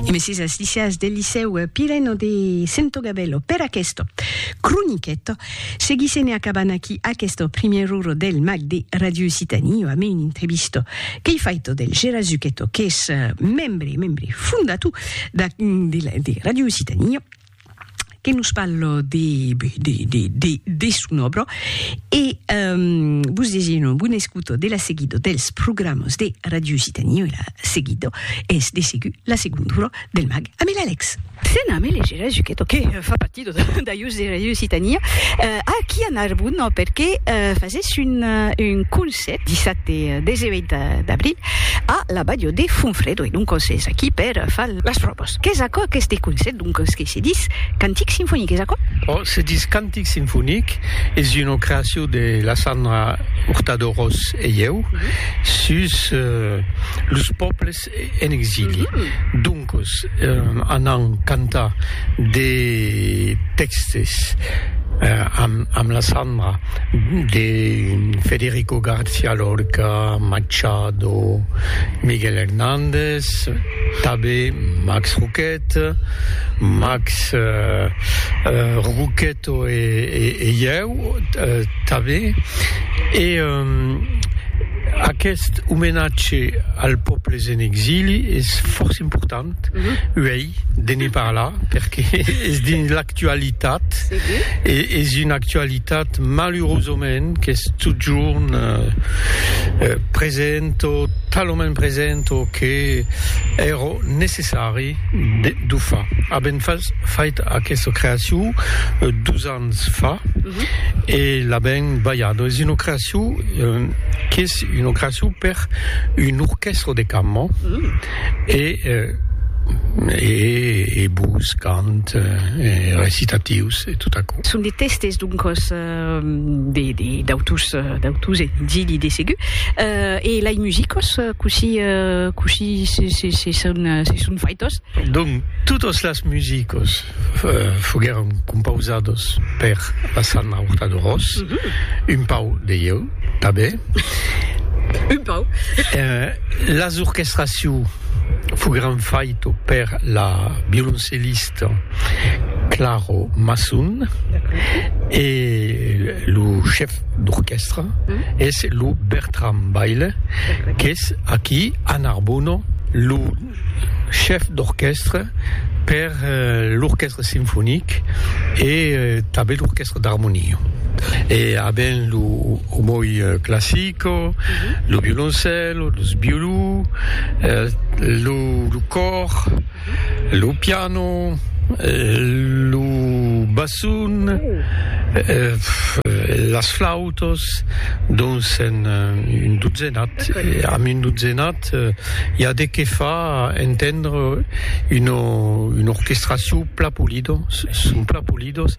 E messies as lisias del licèu Pireno de Santogabello per aquesto croniqueto. Seguisse ne acabant aquí aquesto primier uro del mag de Radio Occitanie o a me un intrevisto qu'ei faito del Gera Zucchetto qu'es membre, membre fondatou de Radio Occitanie. que nos parlo de de de de de son obra e um, vos deseno bon escuto de la seguido dels programas de Radio Occitanie e la seguido es de segur la segonda hora del mag amb l'Alex. Sena me legera Zuchetto que eh, fa partido d'aius de Radio Occitania eh, aquí a Narbona perque eh, fases un, eh, un cons 17, 17 e 18 d'abril a la balho de Fonfredo e donc es aquí per far las pròvas. Qu'es aquò qu'este concèrt donc es que se dis cantic sinfonic, es aquò? Oh, se dis cantic sinfonic, es una creacion de la Sandra Hurtado Ros e ieu sus los pòbles estat en exili, doncos anam cantar de tèxtes amb la Sandra de Federico García Lorca, Machado, Miguel Hernández, tanben Max Roquette, Max Roquette. To e ieu tanben. E aqueste omenatge als pòbles en exili es fòrça important uèi de ne parlar perque es dins l'actualitat e es una actualitat malurosament qu'es totjorn present o talament present o que èra necessari D'ufa. Avèm fait aquesta creacion dos ans fa e l'avèm balhada. Es una creacion qu'es una creacion per un orquèstra de cambra e e bos, cant, recitatius e tot aquò. Son de tèstes, doncas. De d'autus d'autus e d'illi de segur e lai musicos cossí cossí se se se son se son faitos? Donc totos las musicos foguèron compausados per la Sanna Hurtado-Ros, un pau de ieu tanben, un pau, las orchestraciu foguèron faito per la violoncellista, Claro Masson e lo chef d'orquèstra es lo Bertram Baile qu'es aquí a Narbona lo chef d'orquèstra per l'orquèstra sinfonic e tanben l'orquèstra d'armonia e a ben lo omoi classico, lo violoncèlo, los violons, lo còr. lo piano, lo basson, las flautas, dons en un dotzenat, amb un dotzenat i a de qué fa entendre una orquestracion plan polida, son plan polidas.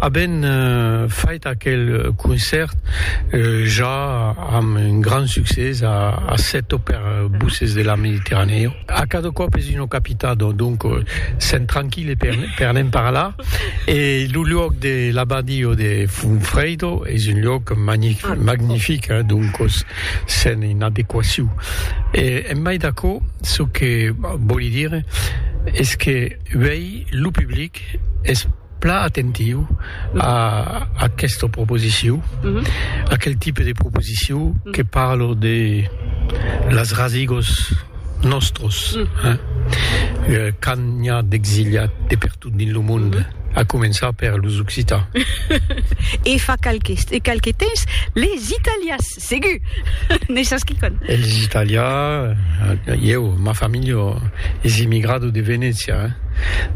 Avèm fait aquel concèrt ja amb un grand succès a sèt o per Voces de la Mediterranèo. A cada còp es una capitat, donc sèm tranquil e per ne'n parlar. E lo luòc de l'abadio de Funfredo es un luòc magnific, donc sèm en adequacion. E en mai d'aquò, çò que vòli dire es que uèi lo public es. Plan atentiu a aquesta proposiciu, aquel tipe de proposiciu que parlo de las rasigos nòstros, quand n'i a d'exiliat de pertot dins lo monde, a començar per los occitans. E fa qualques temps, les italians. Segur! N'es sas quicòm. Elis Itàlia, ieu, ma familha es immigrada de Venècia,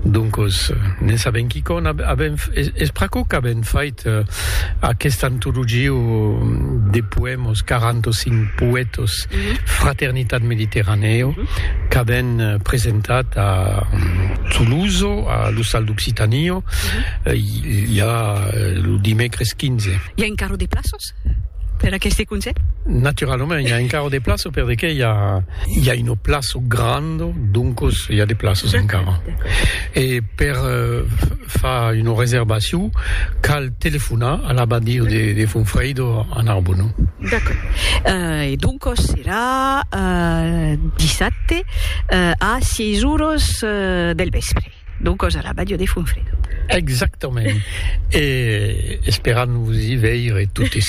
doncos n'en sabèm quicòm. Avèm, es pr'aquò qu'avèm fait aquesta antologia de poèmas, 45 poètas, Fraternitat Mediterranèa, qu'avèm presentat a Toulouse, a l'Ostal d'Occitània, i a lo dimècres 15. I a encara de plaças? Per aqueste concèpt? Naturalament, i a encara de plaço per de qué i a i a una plaço granda, doncos i a de plaços encara. E per fa una reservacion cal telefonar a l'abadia de de Fonfrèido a Narbona. D'accord. Euh e doncos serà dissabte a sièis oras del vèspre. D'o còs a la Bàdia de Fonfredo. Exactament. E esperam vos i veire totes.